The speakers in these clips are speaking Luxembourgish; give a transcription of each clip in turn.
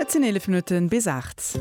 Et sinn 11 Minutten bis 8.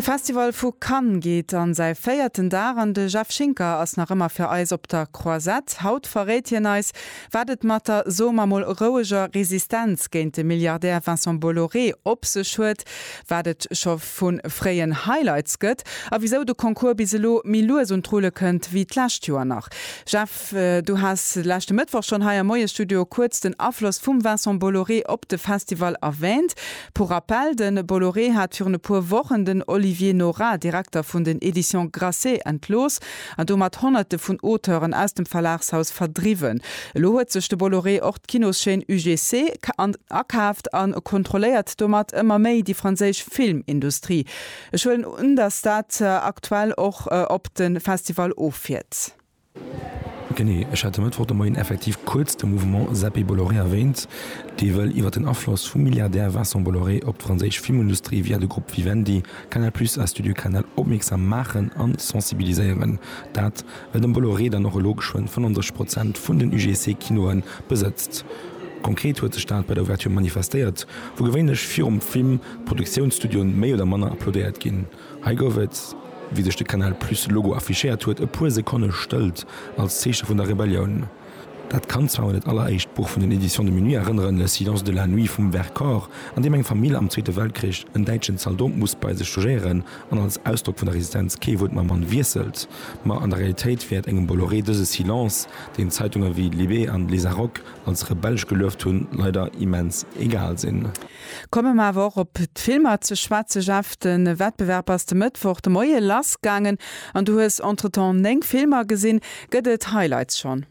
De Festival vu Cannes geet an säi véierten Dag an de Jeff Schinker ass nach ëmmer fir eis op der Croisette. Haut verréit hien eis, wat et mat der, soe mer mol, roueger Resistenz géint de Milliardär Vincent Bolloré op sech huet, wat et scho vu fréien Highlights gëtt a wisou de Concours bis elo méi lues un d'Rulle kënnt wéi d'lescht Joer nach. Jeff, Du has de leschte Mëttwoch schonn hei am Moie-Studio kuerz den Afloss vum Vincent Bolloré op de Festival erwäänt. Pour rappel, de Bolloré hat virun e puer Wochen den Olivier Nora, Direkter vun den Editions Grasset, entlooss an domat Honnerte vun Auteuren aus dem Verlagshaus verdriwwen. Elo huet sech de Bolloré och d'Kinoschaîne UGC akaaft a kontrolléiert domat ëmmer méi déi franséisch Filmindustrie. Ech huelen un, datt dat aktuell och op de Festival offiert. Genee, ech hat e Mëttwoch de Moien effektiv kuerz de Mouvement Seppi Bolloré erwähnt, dee wëll iwwer den Afloss vum Milliardär Vincent Bolloré op d'franséisch Filmindustrie via de Grupp Vivendi, Canal Plus a Studio Canal opmierksam maachen an sensibiliséieren. Dat, well den Bolloré dann och elo geschwënn 35 Prozent vun den UGC-Kinoe besëtzt. Konkret huet sech dat bei der Ouverture manifestéiert, wou gewéinlech virum Film d'Produktiounsstudioen méi oder manner applaudéiert ginn. Hei gouf et, wéi sech de Canal Plus Logo affichéiert huet, e puer Sekonne Stëllt als Zeeche vun der Rebellioun. Dat kann zwar un dat alleréischt Buch vun den Editions de Minuit erënneren, Le Silence de la Nuit vum Vercors, an deem eng Famill am Zweete Weltkrich en däitschen Zaldot muss bei sech logéieren an als Ausdrock vun der Resistenz kee Wuert mam Mann wiesselt. Ma an der Realitéit wäert engem Bolloré dëse Silence, deen Zeitunge wéi Libé an Lézaróc als rebellesch gelueft hunn, leider immens egal sinn. Komme mer awer och op d'Filmer ze schwätzen. Jeff, de Wettbewerb ass de Mëttwoch de Moie lassgaangen an du hues entretemps 9 Filmer gesinn. Gëtt et Highlights schonn?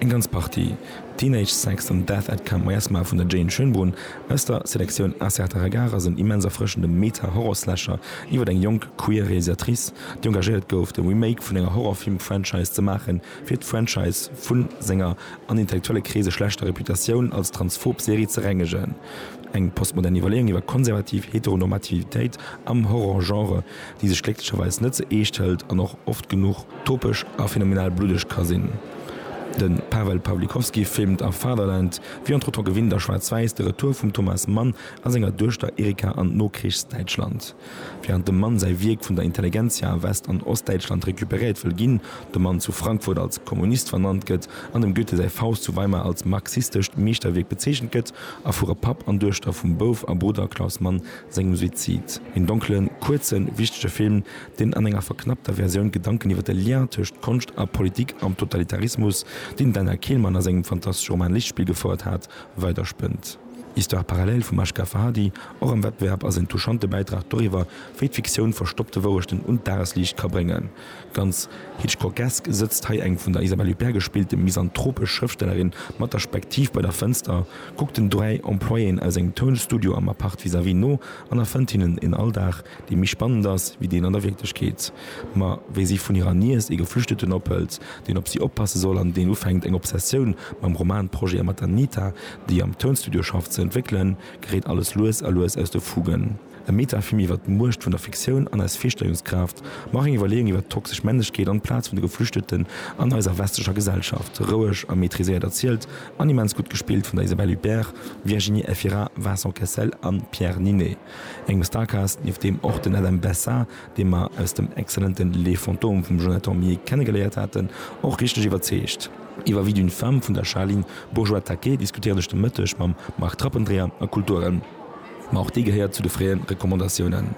Eng ganz Partie. Teenage Sex an Death at Camp Westmar vun der Jane Schönbrunn aus der Selektioun A Certa Regard ass en immens erfrëschende Meta-Horror-Slasher iwwer eng jonk queer Realisatrice, déi engagéiert gouf, de Remake vun enger Horrorfilm-Franchise ze maachen, fir d'Franchise vu senger an intellektuelle Kreese schlechter Reputatioun als transphob Serie ze rengegen. Eng postmodern Iwwerleeung iwwer konservativ Heteronormativitéit am Horror-Genre, déi sech glécklecherweis net ze eescht hëlt an och oft genuch topesch a phänomenal bluddeg ka sinn. De Paweł Pawlikowski filmt a Fatherland, wéi entretemps gewinnt a schwaarz-wäiss, de Retour vum Thomas Mann a senger Duechter Erika an d'Nokrichs-Däitschland. Während dem Mann säi Wierk vun der Intelligentsia a West an Ostdäitschland recuperéiert wëll ginn, de Mann zu Frankfurt als Kommunist vernannt gëtt an dem Goethe säi Faust zu Weimar als marxistescht Meeschterwierk bezeechent gëtt, erfuere Papp an Duechter vum Bouf a Brudder Klaus Mann sengem Suizid. Een donklen, kuerzen, wichtege Film, deen an enger verknappter Versioun Gedanken iwwer de Lien tëscht Konscht a Politik am Totalitarismus, deen den Daniel Kehlmann a sengem fantastesche Roman Lichtspiel gefouert hat, weiderspënnt. Histoire parallèle vum Ashgha Farhadi, och am Wettbewerb, ass en touchante Bäitrag doriwwer, wéi d'Fiktioun verstoppte Wourechten un d'Dagesliicht ka bréngen. Ganz Hitchcockesk sëtzt hei eng vun der Isabelle Huppert gespillte misanthropesch Schrëftstellerin mat der Spektiv bei der Fënster, kuckt den dräi Employéen aus engem Tounstudio am Appart vis-à-vis no an erfënnt hinnen een Alldag, dee méi spannend ass wéi deen an der Wierklechkeet. Ma wéi si vun hirer Niess ee Geflüchteten ophëlt, deen op si oppasse soll an deen ufänkt, eng Obsessioun mam Romanprojet a mat der Nita, déi am Tounstudio schafft, ze entwéckelen, geréit alles lues a lues aus de Fugen. E Metafilm iwwer d'Muecht vun der Fiktioun an eis Virstellungskraaft, ma och eng Iwwerleeung iwwer toxesch Männlechkeet an d'Plaz vun de Geflüchteten an eiser westlecher Gesellschaft. Roueg a maîtriséiert erzielt an immens gutt gespillt vun der Isabelle Huppert, Virginie Efira, Vincent Cassel a Pierre Ninet. Engem Starcast, nieft deem och den Adam Bessa, dee mer aus dem excellenten Les Fantômes vum Jonathan Millet kennegeléiert haten, och richteg iwwerzeegt. Iwwer Vie d'une femme vun der Charline Bourgeois-Taquet diskutéieren ech de Mëtteg mam Marc Trappendreher a Kulturen. Ma och déi gehéiert zu de fréie Recommandatiounen.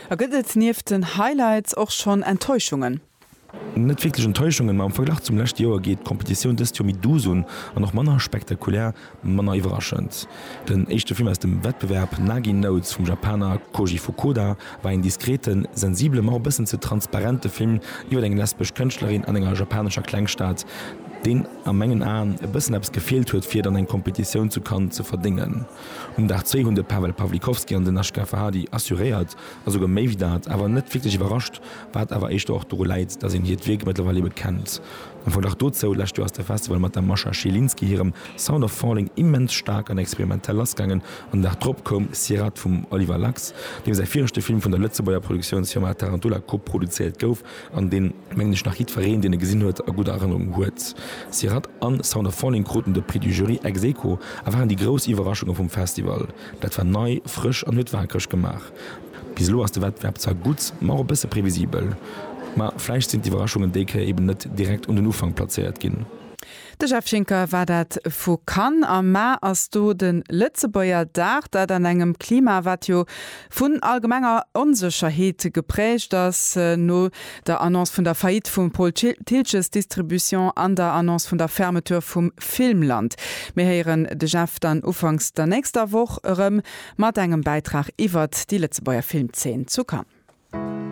A gëtt et nieft den Highlights och schonn Enttäuschungen? Net wierklech Enttäuschungen, ma am Verglach zum leschte Joer geet d'Competitioun dëst Joer méi douce un an och manner spektakulär Manner iwwerraschend, den éischte Film aus dem Wettbewerb, Nagi Notes vum Japaner Koji Fukuda, war een diskreten, sensibele ma och e bëssen ze transparente Film iwwer eng lesbesch Kënschtlerin an enger japanescher Klengstad, deen a mengen Aen e bëssen eppes gefeelt huet fir et an eng Kompetitioun zu Cannes ze verdéngen. Um Dag zwee hunn de Pawel Pawlikowski an den Ashgar Farhadi assuréiert a souguer méi wéi dat, awer net wierklech iwwerrascht, wat awer éischter och doru läit, datt een hiert Wierk mëttlerweil ebe kennt. Am Verglach dozou, Lescht Joer ass de Festival mat der Mascha Zielinski hirem Sound of Falling immens staark an experimentell lassgaangen an de Dag drop koum Sierat vum Oliver Lax, deem säi viregte Film vun der Lëtzebuerger Produktiounsfirma Tarantula koproduzéiert gouf an deen, mengen ech, nach jiddfereen, deen e gesinn huet, a gudder Erënnerung huet. Sierat an Sound of Falling kruten de Prix du Jury ex aequo a waren déi grouss Iwwerraschunge vum Festival. Dat war nei, frësch an huet waakreg gemaach. Bis elo ass de Wettbewerb zwar gutt, ma och e bësse previsibel. Ma vläicht sinn d'Iwwerraschungen déi Kéier eben net direkt un den Ufank plazéiert ginn. De Jeff Schinker war dat vu Cannes. Am Mar ass do de Lëtzebuerger Dag. Dat an engem Klima, wat jo vun allgemenger Onsécherheet gepräägt ass. No der Annonce vun der Faillite vum Paul Thiltges Distribution an der Annonce vun der Fermeture vum Filmland. Mir héieren de Jeff dann ufanks der nächster Woch erëm. Mat engem Bäitrag iwwert déi Lëtzebuerger Filmzeen zu Cannes.